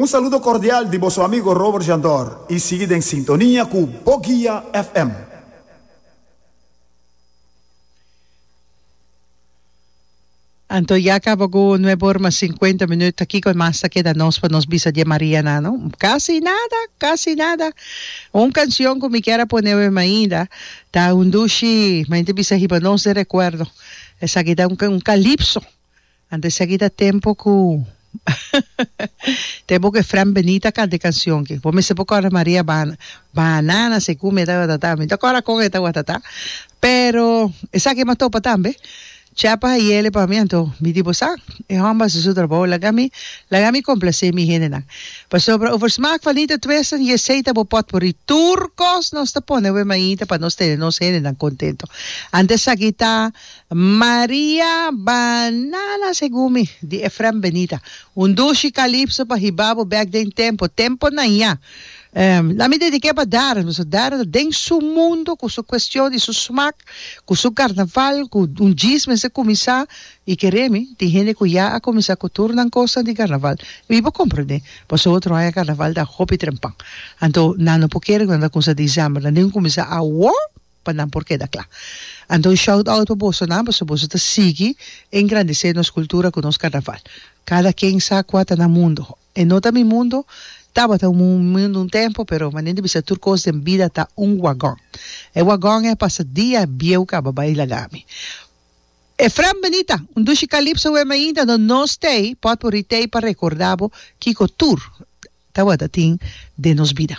Un saludo cordial di boso amigo Robert Jandor y sigui den sintonia cu Bo Guia FM. Anto ya caba cu nuebe ora mas cincuenta minuut ta kico mas ta keda nos pa nos bisa die Mariana no? Casi nada! Casi nada! Un cancion cu mi kier a pone oe mainda ta un dushi, mainta bisa hiba nos den recuerdo, esaki ta un un calipso Antes aki ta tempo cu tempo cu e Fran Beni ta canta e cancion ki. Bo mester por corda Maria Bana Banana segun mi ta watatá. Mi ta corda con e ta watatá. Pero esaki e m'a topa tambe. Chapa Hayele pa mi anto mi di bo sa, e homber a haci su trabou. Laga mi laga mi complacé mi hendenan. Pasobra over smaak van niet het wezen, je zeeta bo pot morí. Tur cos nos ta pone over mainta pa nos tene nos hendenan contento. Antes aki ta Maria, Banana segun mi, di Efrem Benita. Un dushi kalipso pa hiba bo bek den tempo, tempo nan ya. Ehm, la mi dedik'é pa Darren, pasobra Darren ta den su mundo ku su kuestion i su smak, ku su karnaval, ku un djis mester kuminsá, i keré mi, tin hende ku ya a kuminsá ku tur nan kosnan di karnaval. Mi por komprendé, pasobra otro aña karnaval ta hopi trempan. Anto, nan no por kere ku nan ta kuminsá disember, nan tin kuminsá awor. pa nan por keda kla. Anto un shout out pa bosonan pasobra boso ta sigui engrandisé nos kultura ku nos karnaval. Kada ken sa kua ta nan mundo. E no ta mi mundo, tabata un mundo un tempo pero manera di bisa tur kos den bida ta un wagon. E wagon e pasa dia bieu kaba bai lagami. Efrem Benita, un dushi kalipso wen mainta no nos tei potpourri tei pa rekordabo kiko tur tabata tin den nos bida.